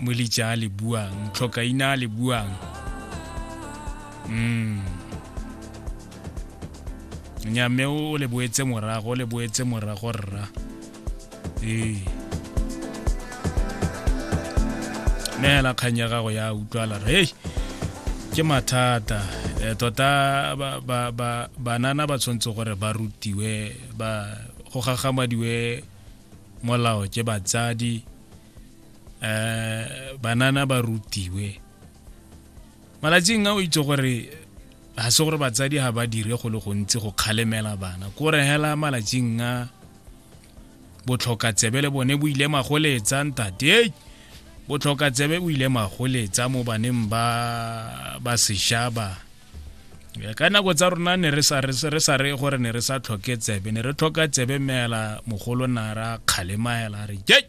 molija le buang tlhokaina le buang mm nyame o le boetse morago o le boetse morago rra ee neela kgang ya gago ya utlwala re hey, ke mathata e, tota ba, ba, ba, banana ba tshwanetse gore ba rutiwe ba go gagamadiwe molao ke batsadi eh banana ba rutiwe malatsing a o itse gore ga se gore batsadi ga ba dire go le gontsi go kgalemela bana ko re hela malatsing a botlhoka tsebe le bone bo ile magoletsa ntate botlhoka tsebe bo ile magoletsa mo baneng ba ba seshaba ka nako tsa rona ne re sa re gore ne re sa tlhoke tsebe ne re tlhoka tsebe meela mogolo nara kgalemaela re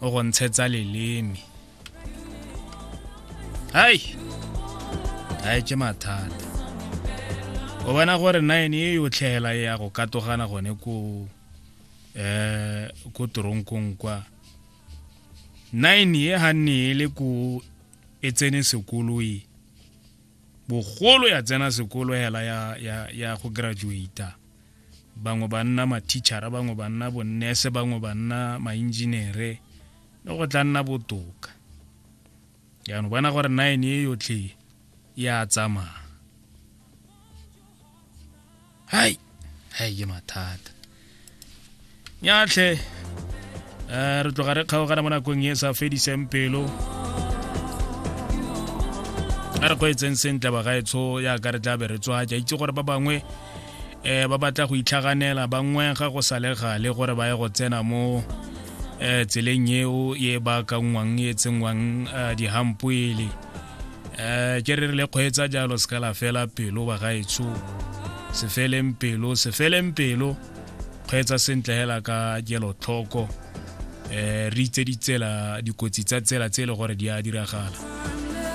o go ntshetsa leleme hai a etse mathata o bona gore nine e yotlhela e ya go katogana gone ko eh ko toronkong kwa nine e ga nne e le ko e tsene sekolo e bogolo ya tsena sekolo hela ya, ya, ya go graduata bangwe ba nna mathichara bangwe ba nna bonnese bangwe ba nna maenjinere le go tla nna botoka jaanong bona gore nine e yotlhe ya tsamaya hai hai ke mathata nyatlhe um re tloga re kgaogana mo nakong e sa fediseng pelo a re kgweetseng sentle bagaetsho yaka re tla be re tswa ke itse gore ba bangwe um ba batla go itlhaganela ba ngwega go sa le gale gore ba ye go tsena mo um tseleng eo e baakangwang e tsenngwang um dihampoele um ke re re le kgweetsa jalo se ka la fela pelo ba gaetsho se feleng pelo se feleng pelo kgweetsa sentle hela ka kelotlhoko um re itse ditsela dikotsi tsa tsela tse e le gore di a diragala